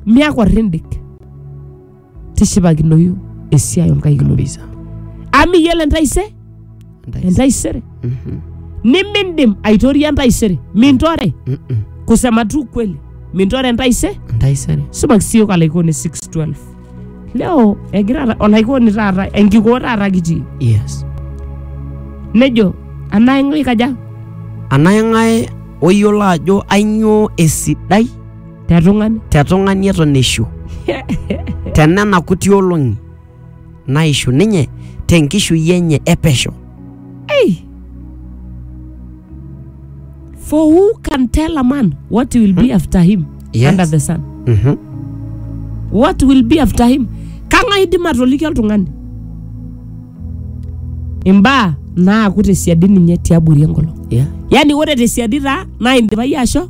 miaku arrendik tishipakinoyu esiai onkaik inonok kabisa amu iyiolo entaise Entaisere. entaisere Mhm. nimindim aitoria entaisere mintore Mm-mm. kusema tu kweli mintore entaise Entaisere. sumaki siyook alaikoni 612 leo egira ta- olaikoni taata enkikoo taata kitii Yes. nejo anaing'o ikaja Anaeng'ae oyiolo ajo ainyoo esidai te tung'ani te tung'ani eton eishu te nena kuti olong'i naishu ninye te nkishui enye e pesho Hey. For who can tell a man what will be after him Yes. under the sun? Mhm. What will be after him? Kang'ae idim atoliki oltung'ani? Imbaa naaku tesiadi ninye tiabori enkolong. Yeah. Yaani ore tesiadi taa naa indipa iyie asho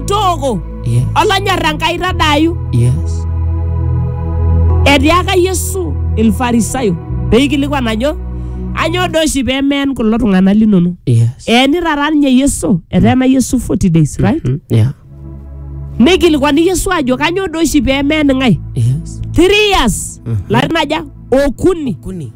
tooko Yes. olonyor enkai tadaayu Yes. etiaka yesu ilfarisayo peikilikuan ajo anyoo doi oshi pemeen kulo tung'anak linono Yes. eeni taata ninye yesu eteena yesu 40 days right Mm, Yeah. neikilikuani yesu ajo kanyoo doi oshi pemeen ng'ae Yes. three years larin aja okuni Kuni.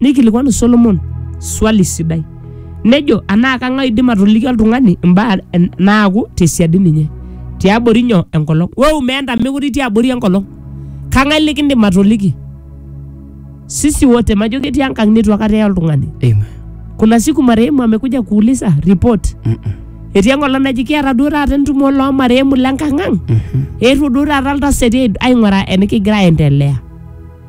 Neikilikwanu Solomon swali sidai nejo anaa kang'ae oidim atoliki oltung'ani imbaa en- naaku tesiadi ninye tiabori nyoo enkolong wou meenta mekure itii abori enkolong kang'ae likindim atoliki sisi wote majo ketii enkang neitu akata eye oltung'ani Amen. kuna siku marehemu amekuja kuuliza report Mm-mm. etii enkolong naji kiata duo taata entumo loo marehemu le nkang'ang Mhm. eetuo duo taata iltasati aing'uraa enikigira aendelea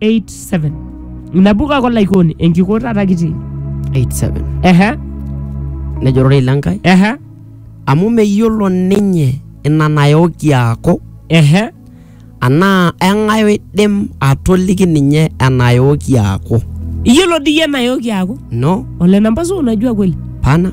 87 nabo kake olaikoni enkiko taata kitii 87 ehe nejo ororei lenkai ehe amu meyiolo ninye ina nayoki aaku ehe anaa eng'ae oidim atoliki ninye enayoki aaku iyiolo diyie enayoki aaku no ole namba suu unajua kweli pana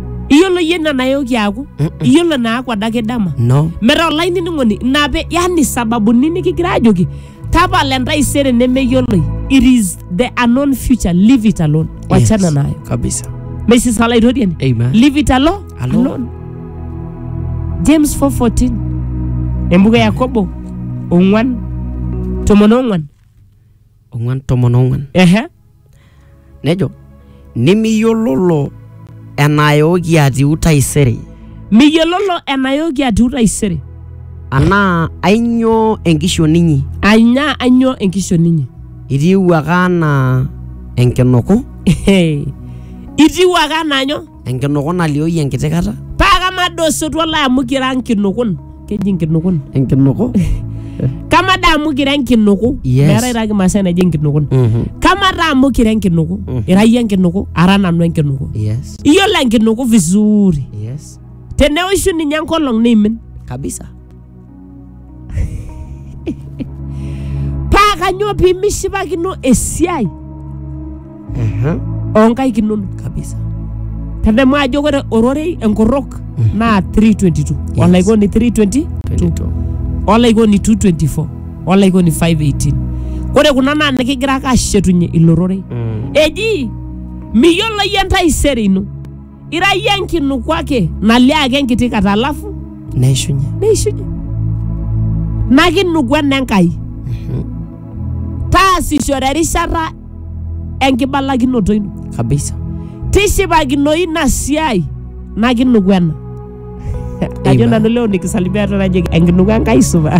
iyiolo iyie ina nayoki aaku iyiolo naaku adake dama no metaa olainining'oni ina pe yani sababuni nikigira ajoki tapala entaisere nemeyioloi it is the unknown future leave it alone wachana Yes, nayo kabisa mesis olaitoriani Amen. leave it alone, Alone. alone. james 414 embuku e yakobo ong'wan tomon ong'wan ong'uan tomon ong'uan ehe nejo nimiyiololo enayooki atiu taisere miyiololo enayooki atiu taisere anaa ainyoo enkishon inyi anya anyoo enkishon inyi itiiwuaka anaa enkinuku Ehe. itiu ake anaa nyoo Enkinuku naliooyu enkiti kata. Paa kamaa doi osotua lai amu kira nkinukun. Keji nkinukun. Enkinuku. Kamaa doi amu kira enkinuku. Yes. Meetae taa Kimaasai naji enkinukun. Mhm. Kamaa taa amu kira enkinuku. Mm. Ira iyie enkinuku, ara nanu enkinuku. Yes. Iyiolo enkinuku vizuri. Yes. Teneoshu ninye enkolong neimin. Kabisa. paa kanyoo pimishipakino esiai Ehe. onkaik inono kabisa tadamu ajo ore ororei enkorrok naa 322 Yes. olaikoni 322 22. olaikoni 224 olaikoni 518 ore kuna naa nikigira ake ashetunye ilo rorei Mm. eji miyiolo yie entaisere ino Ira iyie enkinuku ake nalio ake enkiti kata alafu neishunye neishunye. Ina kinuku ena Enkai. Taasishore erishata enkibalakinoto ino. kabisa Tishipakinoyu ina siai ina kinuku ena. Ajo Amen. nanu leo nikisalimia eton ajo enkinuku Enkai supa.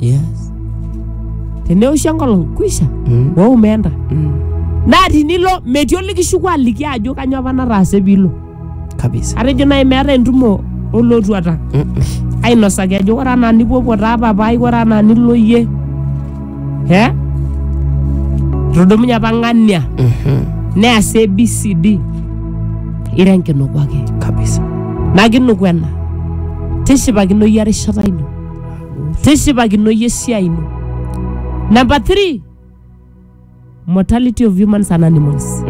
Yes. teneoshi enkolong kuisha Mm. woo umeenda Mm. naa tinilo metii olikishuku aliki ajo kanyoo apa nataase piilo Kabisa. atejo naaji meeta entumo olotuata Mm-mm. ainosaki ajo ore anaa nipuopuo taa papai ore anaa nilo iyie he etodomunye apa ng'ania Mhm. neas abcd ira enkinoku ake Kabisa. nakinuku ena tishipakino iyie erishata ino tishipakinoyu esiai ino namba 3 mortality of humans and animals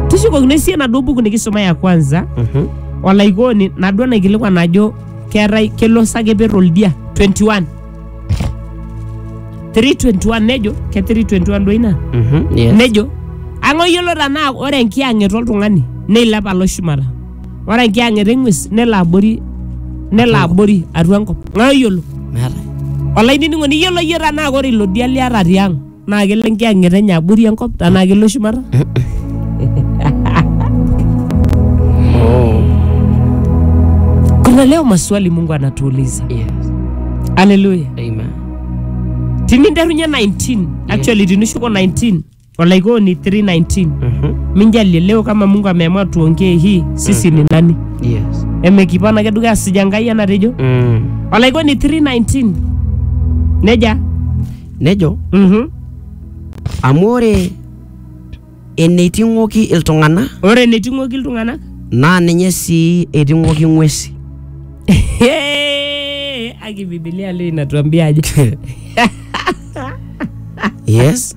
tishukokino esiai enaduo buku nikisoma ya kwanza Mhm. olaikoni naduo naikilikuan ajo keetae kelo sakeper oldia 21 321 nejo ke 321 duo ina Mhm. Yes. nejo ang'oyiolo tanaa ore enkiyang'et oltung'ani neilep alo shumata Ore enkiyang'et eng'ues nelo abori nelo abori atua enkop. Ng'ae oyiolo? meetae Olainining'oni iyiolo iyie tenaa ore ilo dia liata tiang' naa kelo enkiyang'et enye abori enkop tenaa kelo shumata? Kuna leo maswali Mungu anatuuliza. yes Haleluya. amen Tininterunye 19, actually tinishuko 19 Walaikoni 319 Mhm. minjalie leo kama Mungu ameamua tuongee hii sisi ni nani? Yes. Emekipana ake dukuya asija Nkai enatejo. Mm. Walaikoni 319 neja Nejo mhm amu ore eneiting'oki iltung'anak ore eneiting'oki iltung'anak naa ninye sii eiting'oki ng'wesi. Hey, aki Biblia leo inatuambia aje? Yes.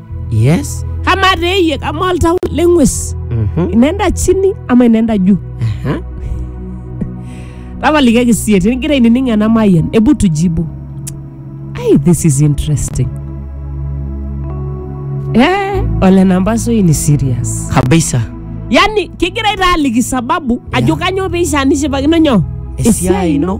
yes kama teyie kama oltau leng'ues Mhm. inenda chini ama inenda juu Aha. tapalikiaki sie tinigira ainining ena mayian ebu tujibu ai this is interesting eh, ole namba soi ni serious kabisa yani kigira itaaliki sababu ajo Yeah. kanyoo peishaa nishipakino nyoo esiai ino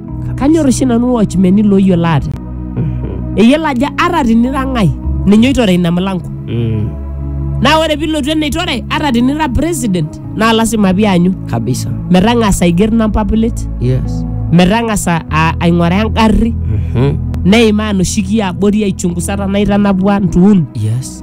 kanyor oshi nanu watchmeni looyiolo ate eyiolo ajo ata tinira ng'ae ninye oitore ina mlango Mm. naa ore pilotu eneitore ata tinira president naa lasima pianyu kabisa metang'asa aiger number plate yes metang'asa a- aing'oraa engarri Mhm. neimaa noshi kiabori aichungusa tanaa itanapua ntuun yes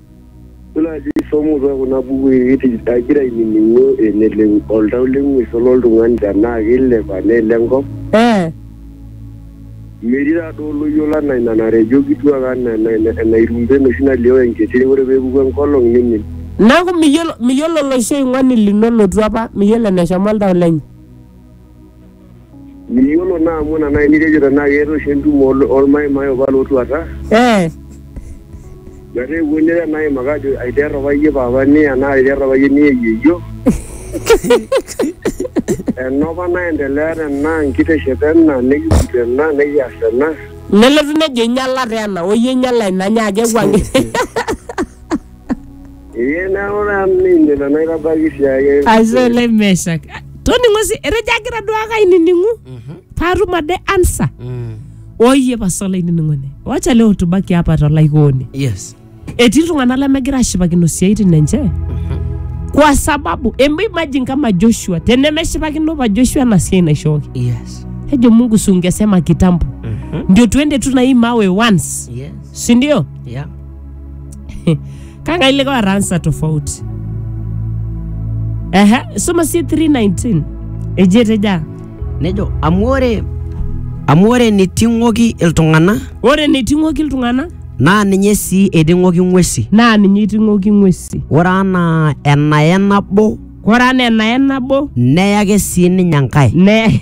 Ore naaji somo too kuna bukui kiti- agira ainining'u eneleng oltau leng'ues ololtung'ani tenaa keilep anaa ele enkop. Eh. Metii taa duo oloyiolo anaa ina natejo kituak anaa ena- ena- enairumbe enoshi nalioo enkiti ore pee epuku enkolong neimin. Neaku, miyiolo, miyiolo oloshi oing'oni lino lotua apa, miyiolo eneshomo oltau lenye. Miyiolo naa amu ina naaji nitejo tenaa keeta oshi entumo ol- olmaimai opa lootuata Eh, metaa epuo nira naa aimaki ajo aiter opa iyie papa niya naa aiter opa iyie niya yieyio enopa naendelea tena nkiteshep ena nikiput ena nikias ena nelotu nejo inyala taa ena oyie inyala ina nyaaki ewuang'ie Iye na ore amu ninye ilo naitabaiki siake. aisee le meshak toning'o si etejo agira duake ainining'u paatum ade ansa oyie pasa olainining'oni wacha leo tubaki hapa tolaikooni yes etii iltung'anak lemegira ashipakino isiaitin enche kwa sababu em- imagine kama joshua tenemeshipakino pa joshua ena siai naishooki yes ejo mungu sungesema kitambo ndio tuende tu na hii mawe once yes sindio yeah kanga ile kwa ransa tofauti ehe soma si 319 ejete ja nejo amu ore amu ore niting'oki iltung'ana ore niting'oki iltung'ana naa ninye sii eiting'oki ng'uesi naa ninye iting'oki ng'uesi ore anaa enaye nabo ore anaa enaye nabo neyake sii ninye enkae ne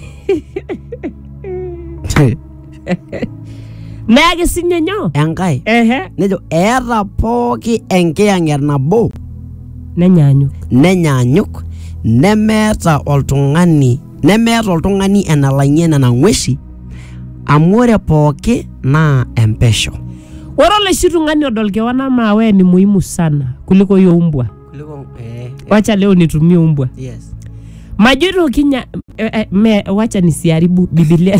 Neaki sinye nyoo? enkae Ehe. nejo eeta pooki enkiyang'et nabo Nenyaanyuk. nenyaanyuk nemeeta oltung'ani nemeeta oltung'ani enalang'ie nena ng'uesi amu ore pooki naa empesho Ore oloshi tung'ani odol kewan amaa wewe ni muhimu sana kuliko hiyo umbwa. Wacha leo nitumie umbwa. Majoito kinya eh, eh, me, wacha nisiharibu Biblia.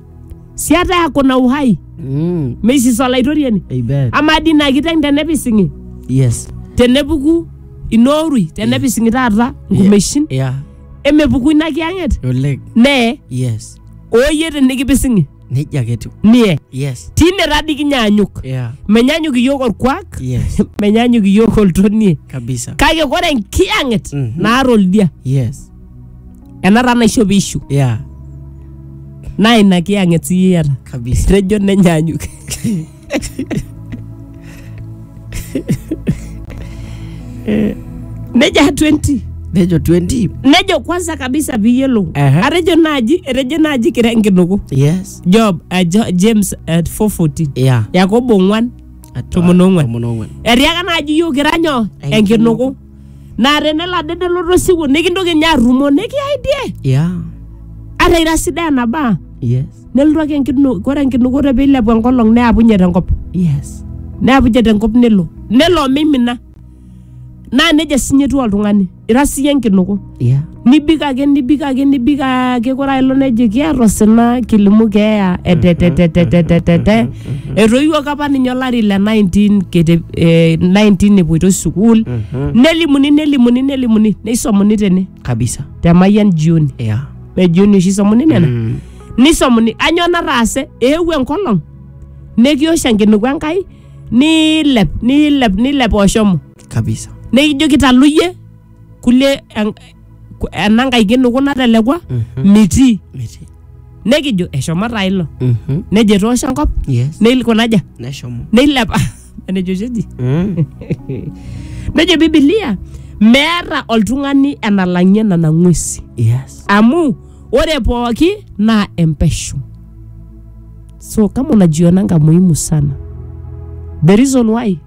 siata yako na uhai Mm. meisisa olaitoriani Amen. amaa dii ina kiteng tenepising'i Yes. tenepuku inoorui tenepising'i taata nkumeshin Yeah. emepuku ina kiyang'et Oleng. nee Yes. ooyie tenikipising'i Nejia ake etiu. nie Yes. tine tadi kinyaanyuk Yeah. menyanyuk iyiok orkuak Yes. menyanyuk iyiok oltonie Kabisa. kake kore enkiyang'et Mhm. naata oldia Yes. ena taa naisho piishu yeah naa ina kiyang'et siyie iyata kabisa tejo nenyaanyuk nejo 20 nejo 20 nejo kwanza kabisa piyiolou Ehe. atejo naaji etejo naaji kira enkinuku yes job uh, jo, james at 414 yeah yakobo ong'wan Atua- Tomon ong'uan. tomon ong'uan etiaka naaji yiok kira nyoo enkinuku naa tenelo ade nelotu osiwuo nikintoki ninye arrumo nikiyai die yeah ata ira sidai enabaa yes nelotu ake enkinu kore enkinukoto piilepu enkolong neapunye tenkop yes neapunye tenkop nelo nelo omimina naa nejia sinye etiu oltung'ani ira siyie enkinuku yeah. nibik ake nibik ake nibik ake kore ailo nejo kiata osina kilimu keeya etetetetetetetete etoiwuoki apa ninye olari le 19 kete eh, 19 epuoitoi sukuul nelimuni nelimuni nelimuni neisomuni tene kabisa te mayian jioni yeah. me jioni oshi isomuni nena mm. nisomuni anyoo nataase eewuo enkolong nikiosho enkiniku enkai niilep niilep niilep oshomo kabisa nikijo kitaluyie kulie en- ku- ena nkae kinuku natelekua Mhm. mitii Miti. nekijo eshomo taa ilo Mhm. nejo etoosho enkop Yes. neilikunaja Neshomo. neilepa enejo oshi eji Mm. nejo bibilia meeta oltung'ani enalang'ie nena ng'uesi Yes. amu ore pooki naa empesho so kama unajiona nga muhimu sana the reason why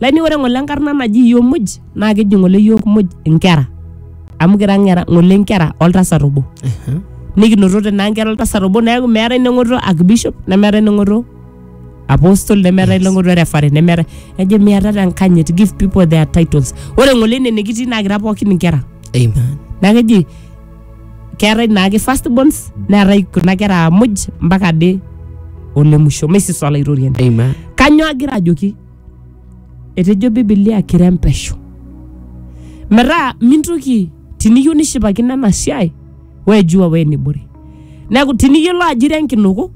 Lani ore ng'ole enkarna naji iyiook muj naa keji ng'ole iyiook muj inkera amu kira ng'era ng'ole inkera oltasat obo nikinotote naa inkera oltasat obo neeku meetae neng'oto archbishop nemeetae neng'oto apostle nemeetae neng'oto referee nemeetae ejo miatata enkanyit give people their titles ore ng'ole ine nikitii naa kira pookin inkera Amen. naa keji keetae naake first borns neetae kuna kera muj mpaka ade ole musho meisisa olaitoriani Amen. kanyoo agira ajoki etejo bibilia kirempesho metaa mintoki tiniyieu nishipakino ena siai wejua wenibore neeku tiniyiolo ajo ira enkinuku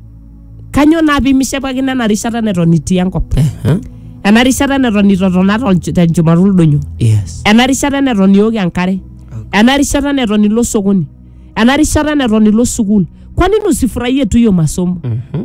kanyoo naa pimishipakino ena rishata neton itii enkop Aha. ena rishata neton itotona tolch- tenchumata oldonyo Yes. ena rishata neton iok enkare ena rishata neton ilo sokoni ena rishata neton ilo sukuul kwa nini usifurahie tu hiyo masomo Mhm.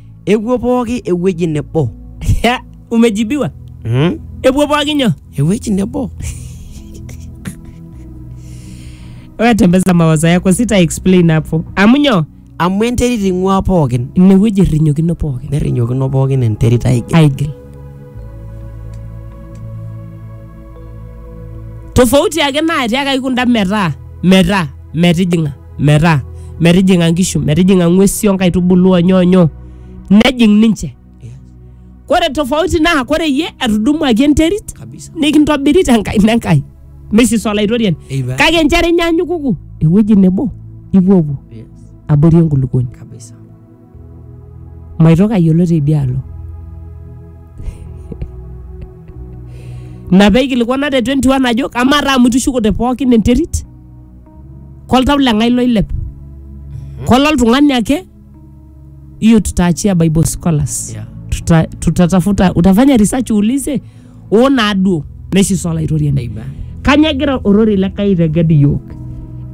epuo pooki ewueji nebo Ya, umejibiwa mm? epuo pooki nyoo ewueji nebo wewe tembeza mawazo yako sita explain hapo amu nyoo amu enterit ing'ua pookin inewueji irrinyokino pooki nerrinyokino pookin enterit aigil aigil tofauti ake naatiakaki kunda metaa metaa metijing'a metaa metijing'a nkishu metijing'a ng'uesi onkaitubulu onyoonyo nejing ninche Yes. kore tofauti naa kore iyie etudumuaki enterit Kabisa. nikintobiri tenkaina enkai misis olaitoriani Amen. kake nchere inyaanyukuku ewueji nebo ipuopuo Yes. abori enkulukuoni Kabisa. maitoki ayiolo teidialo ina peikilikuana te 21 ajo amaa taa amu itushukote pookin enterit koltau leng'ae loilep kololtung'ani ake hiyo tutaachia bible scholars Yeah. Tuta, tutatafuta utafanya research uulize oo naaduo neishiso olaitoriani Amen. kanya egira ororei le Kai aiteged iyiook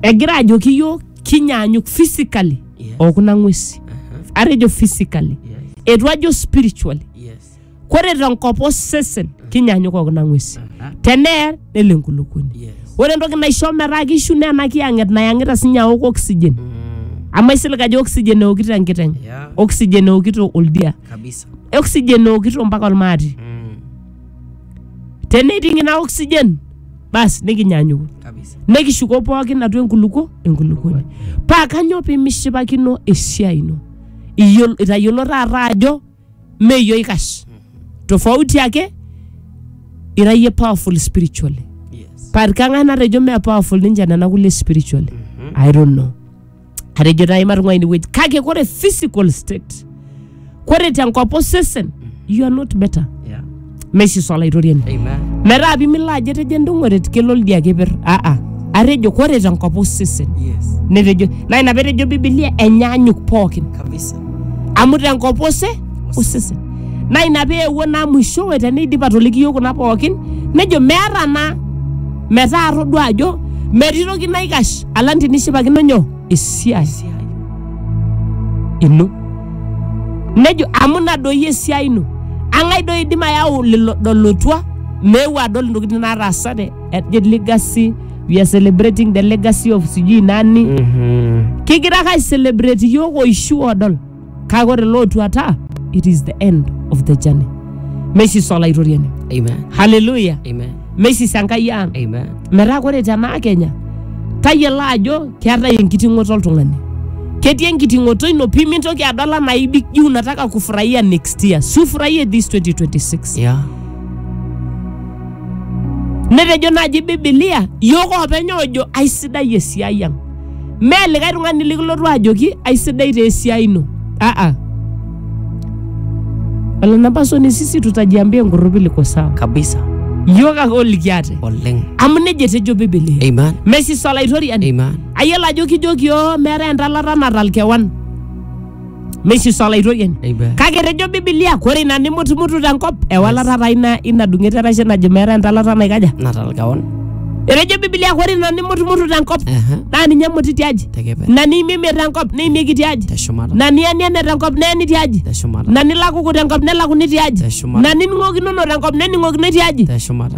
egira ajoki iyiook kinyaanyuk physically Yes. okuna ng'wesi Aha. atejo physically Yes. etu ajo spiritually Yes. kore tenkop osesen kinyanyuk okuna ng'wesi Aha. teneer nelo enkulukuoni Yes. ore entoki naisho metaa kishu naa ena kiyang'et nayang'ita sinye aok oxygen Mm. amu aisilig ajo oxygen eokito enkiteng Yeah. oxygen eokito oldia Kabisa. oxygen eokito mpaka olmaati Mm. teneiting ina oxygen basi nikinyanyuku kabisa nekishuko pookin atua enkulukuo enkulukuoni paa kanyoo pimishipakino esiai ino Iyiol- itayiolo taata ajo meyio ikash tofauti ake ira yie powerful spiritually yes paa kang'ae natejo mee powerful ninche nena kulie spiritually i don't know atejo taa imatung'ua inewueji kake kore physical state kore tenkop osesen you are not better Yeah. meshiso olaitoriani Amen. metaa pimilo ajo etejo endung'oret kelo lidia keper aa atejo kore tenkop osesen Yes. netejo naa ina petejo bibilia enyaanyuk pookin Kabisa. amu tenkop ose osesen naa ina peewuo naa mwishowe teneidip atoliki yiok kuna pookin nejo meeta naa metaa atodua ajo metii toki naikash alang tinishipakino nyoo esiai ino nejo amu ina doi esiai ino ang'ae doi idim ayau lelo dolotua meeu adol intokitin naataasate ejo legacy we are celebrating the legacy of sijui nani Mhm. kigira ake aicelebrate iyiok oishu odol kake ore lootuata it is the end of the journey meisisa olaitoriani Amen. haleluya Amen. meisisa enkai ang Amen. metaa ore tenaa kenya tayiolo ajo keetae enkiting'oto oltung'ani ketii enkiting'oto ino pii mintoki adol anaa ibik juu unataka kufurahia next year sufurahie this 2026 Yeah. netejo naaji bibilia yiok oopeny oojo aisidai esiai ang mee likae tung'ani likilotu ajoki aisidai taa esiai ino aa olanapasoni sisi tutajiambia enkorropi liko sawa kabisa yiok ake olikiate oleng amu nejia etejo bibilia amen mesis olaitoriani amen ayiolo ajo kijoki oo meetae entalata natal kewan meishiso olaitoriani Amen. kake etejo bibilia kore ina nimutumutu tenkop ewalata taa ina ina dung'eta erashe najo meeta entalata naikaja Natal kaon. etejo bibilia kore ina nimutumutu tenkop Aha. naa ninye emuti tiaji Tekepe. na niimimie tenkop niimieki tiaji Teshumata. na nieniene tenkop neeni tiaji Teshumata. na nilakuku tenkop nelakuni tiaji Teshumata. na nining'okinono tenkop nening'okinoi tiaji Teshumata.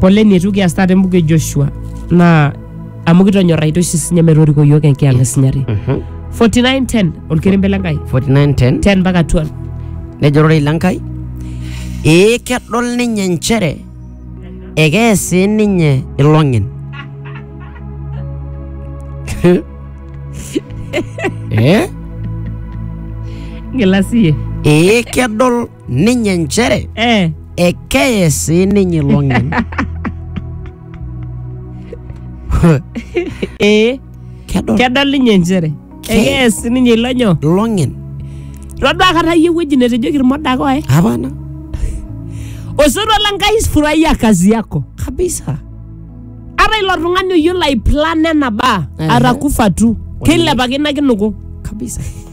poleni eitu kias taata embuku e joshua naa amu kitonyorraita oshi sinye metoriko yiok enkiang esinyati 4910 olkerembe le nkai 4910 10 mpaka 12 nejo ororei le Nkai ee kedol ninye nchere ekees sii ninye ilong'en eh? ng'ila siye ee kedol ninye nchere eh, ekeye sii ninye ilong'en eh, kedol kedol ninye nchere Ke- ekees ninye ilo nyoo ilong'en todua kata yie ewueji netejoki irmodaka oye hapana osotua la nkai furahia kazi yako kabisa ata ilo tung'ani oyiolo aiplan ena baa Ehe. atakufa tu keilepakino ake nuku kabisa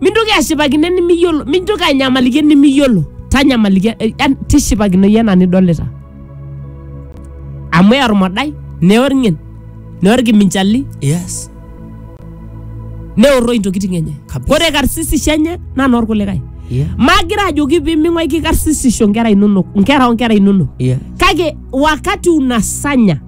mintoki ashipakino enimiyiolo mintoki anyamaliki enimiyiolo tanyamaliki eh, yan- tishipakino iyie ena nidolita amu eya ormodai neya orng'en neya orkiminchali Yes. neorroi intokiting enye Kabisa. ore karsisisho enye naa noorkulikae Yeah. magira ajoki piming'uaiki karsisisho nkera inonok nkera onkera inonok Yeah. kake wakati unasanya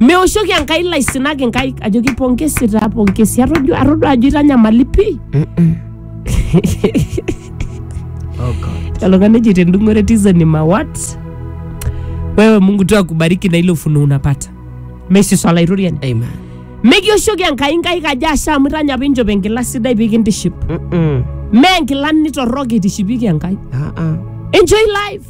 meoshoki enkai laisinak inkaik ajoki pongesi taa pongesi atodua atodua ajo itanyamali pii Oh God. Naloka neji tendungore tiza ni mawat. Wewe Mungu tu akubariki na ile ufunuo unapata. Messi swala irorian. Amen. Mekioshoki enkai nkai kaja asha amu itanya apa inchop enkila sidai pikintiship. Mm-mm. Mee nkilani torrok itishipieki enkai. Uh-uh. Enjoy life.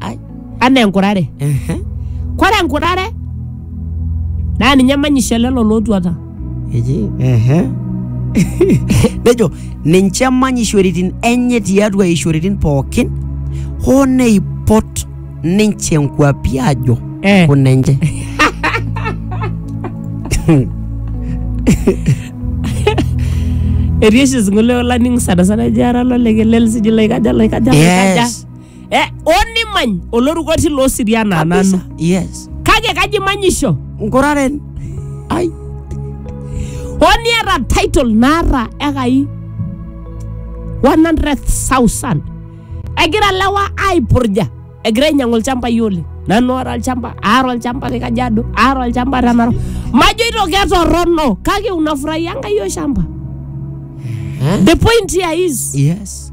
Ai, anaa enkurare ehe, kore enkurare naa ninye manyisho lelo lootuata eji, ehe. nejo ninche manyishoritin enye tiatua ishoritin pookin hoo neipot ninche nkuapi ajo Eh. kunenche etii oshi singolio laning sanasana eji ara lolekelen sijui laikaja laikaja laikaja yes eh, onimany oloruko tilo osiria naa Kabisa. nanu yes kake kaji manyisho nkuraren ai oniata title naata ekai 100,000 egira lewa aipurja egira ainyang'u ilchambai oleng nanu ora olchamba aar olchamba te kajiado aar olchamba te narok majoito ketorrono kake unafurahia enkai oshamba the point here is yes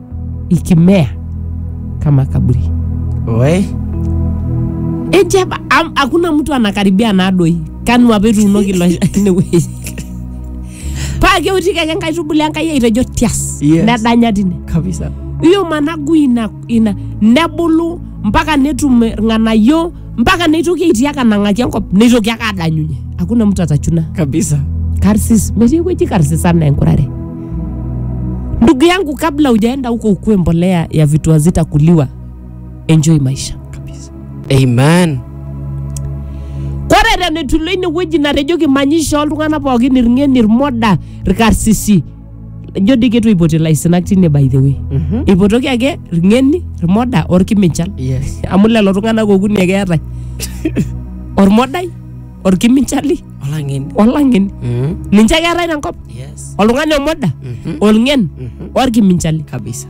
ikimea kama kaburi Oi. eti apa am- hakuna mtu anakaribia nadoi kanu apa etuunoki ilo inewueji paa keutiki ake nkaitubulu enkai aitejo tias Yes. nedanya tine Kabisa. iyo managu ina, ina nebulu mpaka netum irng'anayio mpaka neitoki aitii ake anang'aki enkop neitoki ake adanyunye hakuna mtu atachuna kabisa karsis metii ewueji karsis anaa enkurare ndugu yangu kabla ujaenda huko ukue mbolea ya vitu hazitakuliwa enjoy maisha kabisa amen korere netulo inewueji natejoki manyisho oltung'anak pookin irng'en irmoda irkarsisi ijo dii ketu eipoti ilaisinak tine by the way Mhm. eipotoki ake irng'eni irmoda orkiminchal Yes. amu lelo tung'anak okuni ake eetae ormodai orkiminchali Olang'eni. olang'eni Mhm. ninche ake eetae tenkop Yes. oltung'ani omoda Mhm. olng'en Mhm. orkiminchali Kabisa.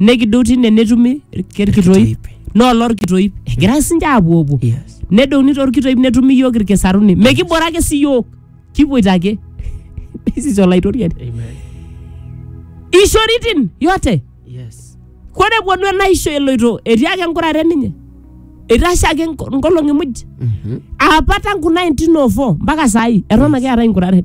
nekidou tine netumi irk- irkitoip naa olorkitoip egira sinche apuopuo Yes. nedouni torkitoip netumi iyiok irkisaruni mekibora ake si yiok kipoito ake sisi olaitoriani Amen. ishoritin yote Yes. kore epuonu enaisho eloito etii ake enkurare ninye eitashe ake nko- nkolong'i muj Mhm. apa tangu 1904 mpaka saai eton ake eetae inkuraren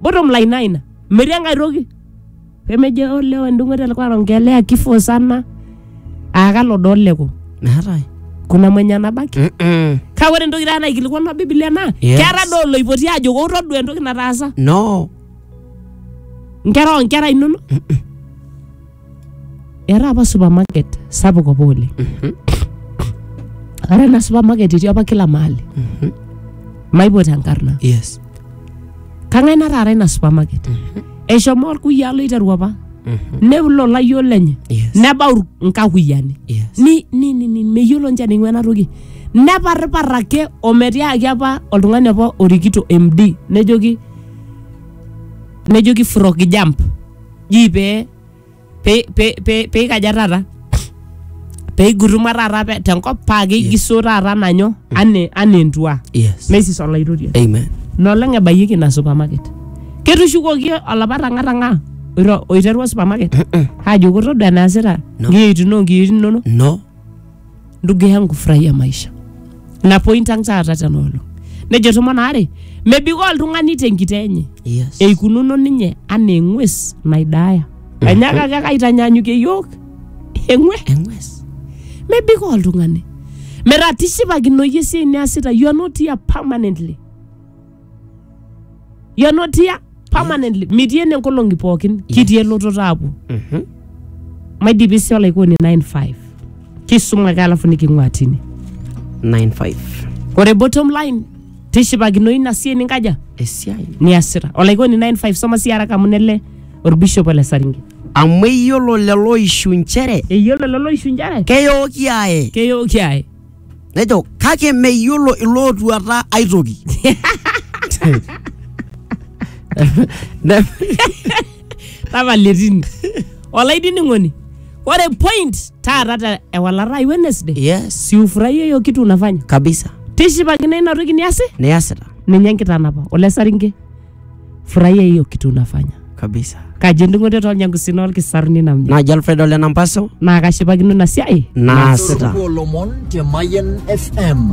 Bottom line naa ina. Metii enkae toki. Pemejo olewa endung'oto alikuwa anaongelea kifo sana. Aa kalo doo leko. Meetae. Kuna mwenye anabaki. Mm-mm. Kake ore entoki taata naikilikuanwa Biblia naa Yes. keeta doo oloipoti ajo wou todua entoki nataasa No. nkera oo nkera inonok. era apa supermarket sapuk apa oleng ore ena supermarket etii apa kila mahali maipot enkarna yes kang'ae nataara ina supermarket eshomo orkuyiaa loiteru apa neulo layiok lenye yes nebau nkakuyiani yes ni ni ni ni meyiolo nche ning'ua ena toki neparripar ake ometiaki apa oltung'ani apa orikito md nejoki nejoki frog jump ji pee pee pee pee pee ikaja taata pee iguruma taata pe- tenkop paa keigiso taata nanyo anaa anaa entua yes neisis olaitoriani amen nolong ebayieki ina supermarket ketushukoki olapa tang'atang'a oiro- oiterua supermarket ajo kotodua enaasita No. nkiyeitin oo nkiyeitin inonok no ndugu yangu furahia maisha na point ang taata tena olong nejo tomon aare mebikoo oltung'ani tenkita enye Yes. eikununo ninye anaa eng'ues naidaaya enyaaka ake kaitanyanyukie yiok eng'ue Eng'ues. mebikoo oltung'ani metaa tishipakinoyie esiai niasita you are not here permanently You're not here permanently. Mitii ene nkolong'i pookin. Kitii elototo aapuo. Mhm. Maidipi sii olaikoni 95. Kisuma ake alafu niking'ua tine. 95 Ore bottom line, tishipakino ina siai ninkaja esiai niasita. Olaikoni 95 soma sii haraka amu nele orbishop ole Saringe. amu eyiolo lelo ishu nchere Eyiolo lelo oishu njere keyooki aye keyooki ae. nejo kake meyiolo ilootuata aitoki Ne- tapala etini olainining'oni ore point taata te ewalata ai Wednesday yes siufurahia hiyo kitu unafanya kabisa tishipakino ina toki niasi niasita ninye enkitanapa ole saringe furahia hiyo kitu unafanya kabisa kaji endung'oto tolnyangusin olkisar ninamnya najo alfred ole nampaso naa kashipakino ina siai naasita Sukuku olomon te Mayan FM.